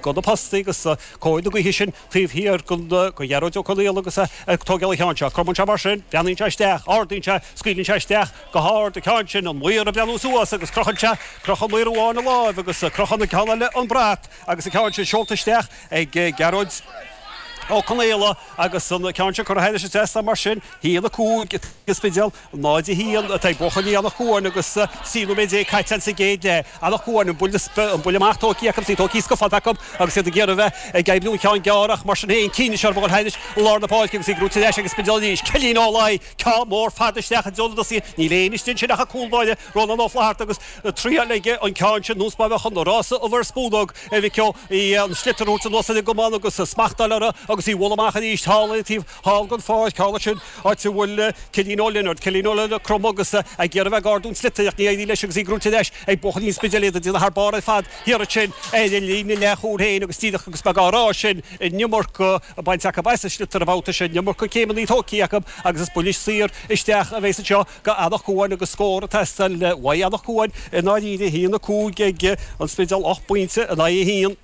go na postaí agus cóir na gaoithe sin taobh thiar go Gearóid Ó Conaola agus é ag tógáil an cheann. Cromann sé mar sin, breathnaíonn sé isteach, ardaíonn sé, scaoileann sé isteach go hard an ceann sin, an maor ag breathnú suas agus crochann sé, crochann maor amháin a láimh agus crochann an ceann eile an brat agus an ceann sin seolta isteach ag Gearóid Ó Conaola agus an ceann sin curtha thairis an trasnán mar sin, 1-5 ag An Spidéal. 0-1 atá ag buachaillí Anach Cuain agus 13 nóiméad caite ann sa gcéad leath. Anach Cuain an buille amach tógtha acu, í tógtha sciobtha acu agus iad ag iarraidh bheith ag oibriú an cheann gearr ach mar sin féin Keane is Searbhóg thairis i lár na páirce agus í gnóite ar ais ag an Spidéal arís. Cillín Ó Laoi, ceann mór fada isteach i dtreo na dtosaithe, níl aon istigh ansin ach an cúlbáire Rónán Ó Flatharta agus triail aige an ceann sin anuas mar a bheadh an rása ubh ar spúnóg a mhic ó, an sliotar a thabhairt anuas ar an gcamán agus smacht a fháil uirthi agus í a bhualadh amach arís thall ar taobh thall den pháirc thall ansin, áit a bhfuil Cillian Ó Lionaird, Cillín Ó Lionaird, cromtha agus é ag iarraidh a bheith ag ardú an tsliotair ach ní éiríonn leis agus í gnóite ar ais ag buachaillí an Spidéil, iad ag déanamh thar barr ar fad thiar ansin ar an líne leath chúil féin agus díreach agus mé á rá sin an iomarca bainte acu as an sliotar an babhta seo, an iomarca céimeanna tógtha acu agus is buille saor isteach a bheas anseo go Eanach Cuain agus scór ag teastáil uaidh Eanach Cuain. I ndáiríre, a haon, a cúig ag an Spidéal, ocht bpointe in aghaidh a haon.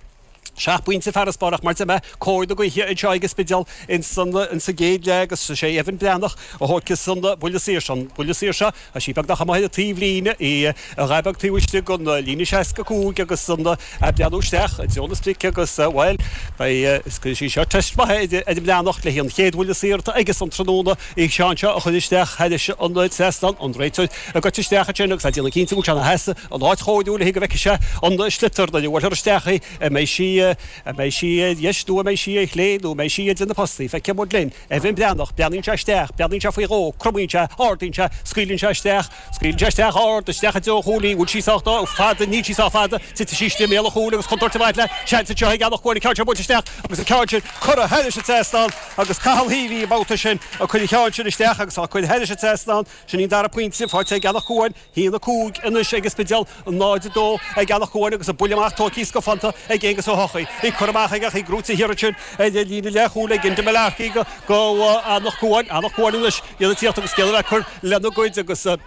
Seacht bpointe farasbairr ach mar a dúirt mé cóir na gaoithe anseo ag an Spidéal in sa gcéad leath agus is é Evan Breathnach a thógfas an buille saor seo, an buille saor seo tá sí beagnach amuigh ar taobh líne í, a ghaith beag taobh istigh den líne 65 agus ag breathnú isteach i dtreo na sprice agus bhuel beidh, is cuirfidh sí seo teist mhaith ar Evan Breathnach le hí an chéad bhuille saor atá aige san tráthnóna, an ceann seo a chur isteach thairis an trasnán, an réiteoir. ag goil isteach ansin agus ag déanamh cinnte go bhfuil sé ina sheasamh in áit chomh dúigh le haghaidh go bhfeicfidh sé an sliotar, nuair a bhuailfear isteach í, an mbeidh sí, an mbeidh sí ar dheis nó an mbeidh sí ar chlé nó an mbeidh sí idir na postaí, feicfidh muid linn, Evan Breathnach, breathnaíonn sé isteach, breathnaíonn sé faoi dhó, cromann sé, ardaíonn sé, scaoileann sé isteach, scaoileann sé isteach ard, isteach i dtreo an chúil í, an bhfuil sí sách fada, níl sí sách fada, titfidh sí istigh i mbéal an chúil agus contúirt i bhfad le seans anseo ag Eanach Cuain, an ceann sin buailte isteach agus an ceann sin curtha thairis an trasnán agus Cathal Healy an babhta sin ag cur an cheann sin isteach agus á cur thairis an trasnán. Sin an dara pointe faighte ag Eanach Cuain, 1-5 anois ag an Spidéal, 0-2 ag Eanach Cuain agus an buille amach tógtha scafánta ag Aonghus Ó hEochaidh. Í curtha amach aige ach í gnóite thiar ansin ar líne leathchúil ag Enda Mullarkey go Eanach Cuain. Eanach Cuain anois iad ag tíocht agus ag iarraidh a bheith ag cur lena gcuid agus ag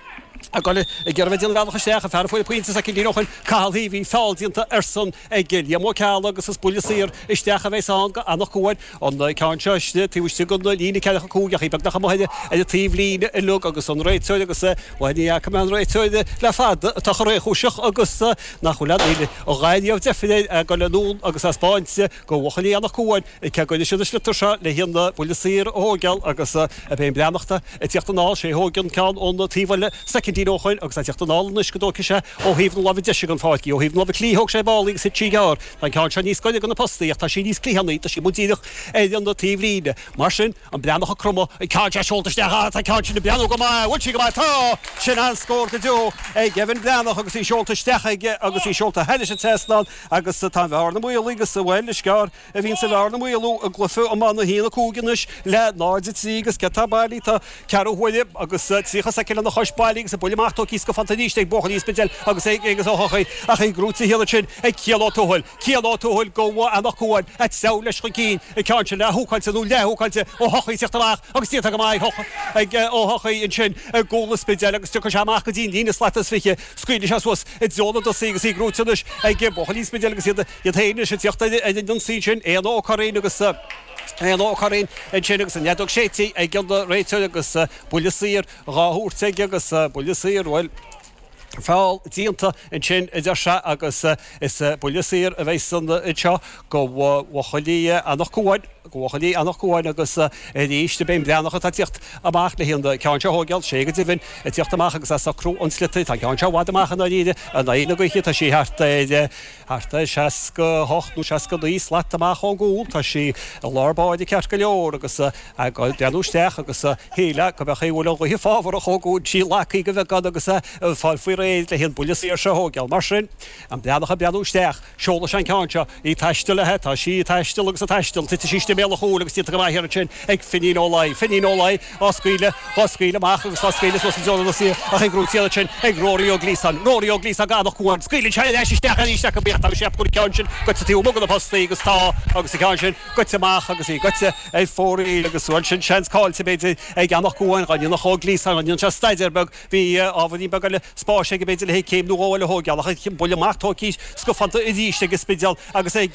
iarraidh a bheith ag déanamh bealach isteach. An fear a fuair an pointe soicind ó shin, Cathal Heavey, feall déanta airsean ag Liam Ó Ceallaigh agus is buille saor isteach a bheas ann go Anach Cuain, an ceann seo taobh istigh den líne ceathracha cúig ach í beagnach amuigh ar an taobh líne uilig agus an réiteoir agus bhuel ní fhaca mé an réiteoir le fada atá chomh réchúiseach agus nach bhfuil a dhath riamh deifir air ag dul anonn agus ag spáint go buachaillí Anach Cuain. Ag cead go n-éiseodh na sliotair seo le haon bhuille saor a thóigeáil agus Evan Breathnach, ag teacht anall sé a thóig an ceann ón taobh-bhuille soicindín ó shoin agus ag teacht anall anois go dtóigfidh sé ó thaobh na láimhe deise den pháirc. Ó thaobh na láimhe clí thóig sé ar ball í agus thit sí gearr. Tá an ceann seo níos gaire go na postaí ach tá sí níos cliathánaí, tá sí amuigh díreach ar an taobh-líne. Mar sin, an Breathnach ag cromadh, an ceann seo seolta isteach, tá an ceann sin ag breathnú go maith, an bhfuil sí go maith, tá! Sin an-scór go deo ag Evan Breathnach agus í seolta isteach aige agus í seolta thar an trasnán agus tá an bhearna maolaithe agus, bhuel, is gearr. a bhíonn sa bhearna mhaolú i gcluiche iomána 1 5 anois le 0 3 agus imithe bailithe tá ceathrú huaire agus tríocha soicind lena chois bailithe agus an bualadh amach tóigthe go fonnta arís ag buachaillí an Spidéil agus é acu ach í gnóite san ionad sin ag Cian Ó Tuathail Cian Ó Tuathail go Anach Cuain ag treabhadh leis chun cinn an ceann sin leath-húcáilte nó leath-húcáilte Ó Tuathaigh ag teacht amach agus déanta go maith ag Ó Tuathaigh ansin i gcúl an Spidéil agus tiocfaidh sé amach go dtí an líne slata is fiche scaoilfidh sé suas i dtreo na dtosaithe agus í gnóite anois ag buachaillí an Spidéil agus iad Iad féin ag tíocht ar an ionsaí sin, Éanna Ó Curraoin agus Éanna Ó Curraoin ansin agus an fheadóg séidte ag an réiteoir agus buille saor dhá thabhairt aige agus buille saor, bhuel, feall déanta ansin a deir sé agus is buille saor a bheas ann anseo go Bhuachaillí Anach Cuain, go Bhuachaillí Anach Cuain agus is é Evan an Breathnach atá ag tíocht amach le haghaidh an ceann seo a thóigeáil, is é go deimhin ag tíocht amach agus ag socrú an sliotair, tá an ceann seo i bhfad amach i ndáiríre, in aghaidh na gaoithe, tá sí thart ar. Thart ar 68 nó 69 slat amach ón gcúl, tá sí i lár báire ceart go leor agus ag goil ag breathnú isteach agus a shílfeá go mb'fhéidir go bhfuil an ghaoth fabhrach ón gcúl tá sí lagtha go beagán agus ag fáil faoi réir le haghaidh an buille saor seo a thógáil. Mar sin, an Breathnach ag breathnú isteach, seolann sé an ceann seo, í ag taisteal aige, tá sí ag taisteal agus ag taisteal, titfidh sí istigh i mbéal an chúil agus í tóigthe go maith ansin ag Finín Ó Laoi. Finín Ó Laoi. á scaoileadh, dhá scaoileadh amach agus dhá scaoileadh suas i dtreo na dtosaithe ach í gnóite ansin ag Rory Ó Gliasáin, Rory Ó Gliasáin go Anach Cuain, scaoileann sé ar ais isteach arís ach go beacht agus ceapaim go bhfuil an ceann sin goite taobh amuigh go na postaí agus tá agus an ceann sin goite amach agus í goite ar fóraoil agus bhuel sin seans cáillte b'fhéidir ag Anach Cuain, dá ndéanfadh Ó Gliasáin, dá ndéanadh sé staidéar beag, bhí ábhairín beag eile spáis aige b'fhéidir le haghaidh céim nó dhó eile a thóigeáil ach an bualadh amach tóigthe scafánta arís ag an Spidéal agus ag.